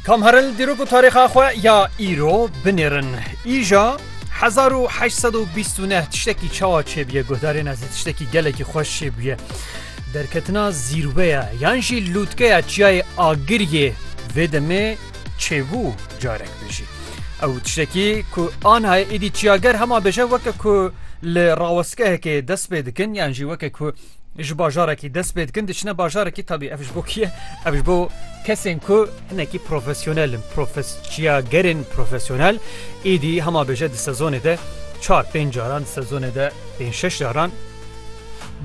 Kam heril dîrok û tarîxa xwe ya îro binêrin. Îja 1829 tiştekî çawa çêbûye guhdarên ez tiştekî gelekî xweş çêbûye. Derketina zîrweya yan jî lûtkeya çiyayê Agiriyê vê demê çêbû carek bijî. Ew tiştekî ku anayê êdî çiyager hema bêje weke ku li rawestgehekê dest pê dikin yan jî weke ku Ji bajarekî dest pê dikin diçine bajarekî tabî ev ji bo kî ye ev ji bo kesên ku hinekî profesyonel in profesçiya gerên profesyonel êdî hema bêje di sezonê de çar pênc caran di sezonê de pênc şeş caran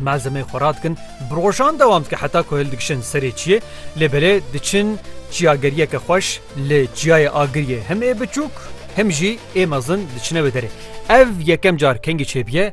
malzemê xwe radikin bi rojan dewam dike heta ku hil dikişin serê çiyê lê belê diçin çiyageriyeke xweş li çiyayê agiriyê hem ê biçûk hem jî ê mezin diçine wê derê ev yekem car kengî çêbiye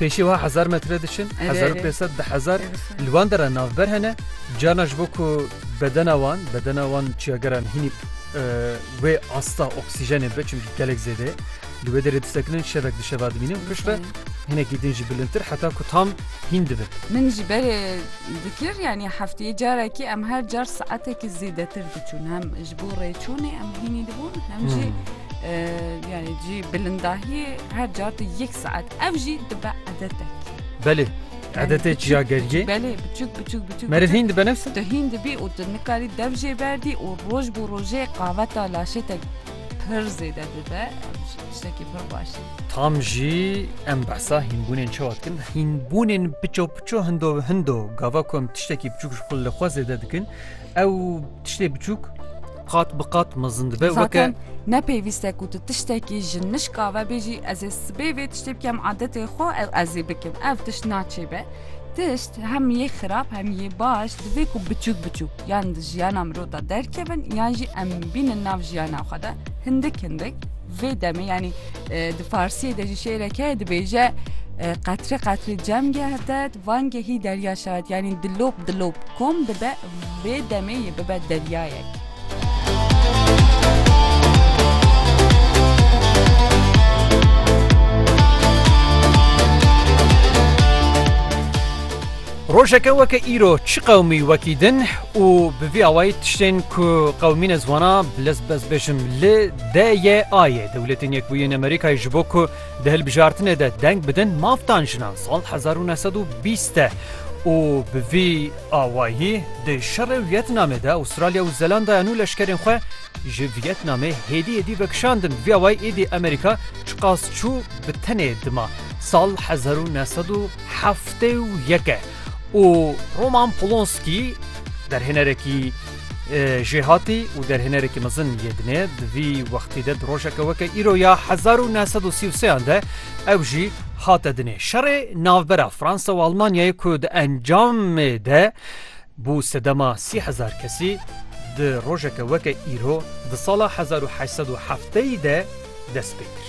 Pêşî wiha hezar metre diçin, hezar û pêsed di hezar li wan de re navber hene. Carna ji bo ku bedena wan, bedena wan çiyageran hînî wê asta oksîjenê be çimkî gelek zêde li wê derê disekinin şevek di şeva dimînin pişt re hinekî din jî bilintir heta ku tam hîn dibin. Min ji berê dikir yanî hefteyê carekî em her car saetekî zêdetir diçûn hem Ji bo rêçûnê em hînî dibûn hem jî yani cî bilindahiyê her car tu yek saet ev jî dibe edetek. Belê edetê çiya gergê Belê biçûk biçûk biçûk meriv hîn dibe nefs tu hîn dibî û tu nikarî dev jê berdî û roj bo rojê qaveta laşê te pir zêde dibe tiştekî pir baş e. Tam jî em behsa hînbûnên çawa dikin hînbûnên piço piço hindo hindo gava ku em tiştekî biçûk ji xwe li xwe zêde dikin ew Tiştê biçûk qat bi qat mezin dibe weke Zaten ne pêwîste ku tu tiştekî ji nişka ve bêjî ez ê sibê vê tiştê bikem adetê xwe ew ez ê bikim. Ev tişt naçêbe. Tişt hem yê xirab hem yê baş divê ku biçûk biçûk yan di jiyana mirov de derkevin yan jî em bînin nav jiyana xwe de hindik hindik vê demê yanî e, di farsiyê de jî şêrek heye dibêje e, qetre qetre cem geh ded van gehî derya şaret yanî dilop dilop kom dibe Rê demê yê bibe deryayek. Rojeke weke îro çi qewmî wekî din û bi vî awayî tiştên ku qewmî ne zwana bi lez bez bêjim li DYAyê Dewletên Yekbûyî Amerîkayê ji bo ku di hilbijartinê de deng bidin maftan jinan sal hezar û neh sed û bîst e û bi vî Awayî di şerê Wîetnamê de Aûstralya û Zelandaya nû leşkerên xwe ji Wîetnamê hêdî hêdî vekişandin. Vî awayî êdî Amerîka çiqas çû bi tenê dima sal hezar û neh sed û heftê û yek e û Roman Polonskî derhênerekî, Jêhatî û derhênerekî mezin yê dinê di vî wextî de di rojeke weke îro ya hezar û neh sed û sî û sêyan de ew jî hate dinê. Şerê navbera Fransa û Almanyayê ku di encamê de bû sedema sî hezar kesî di rojeke weke îro di sala hezar û heşt sed û hefteyî de dest pê kir.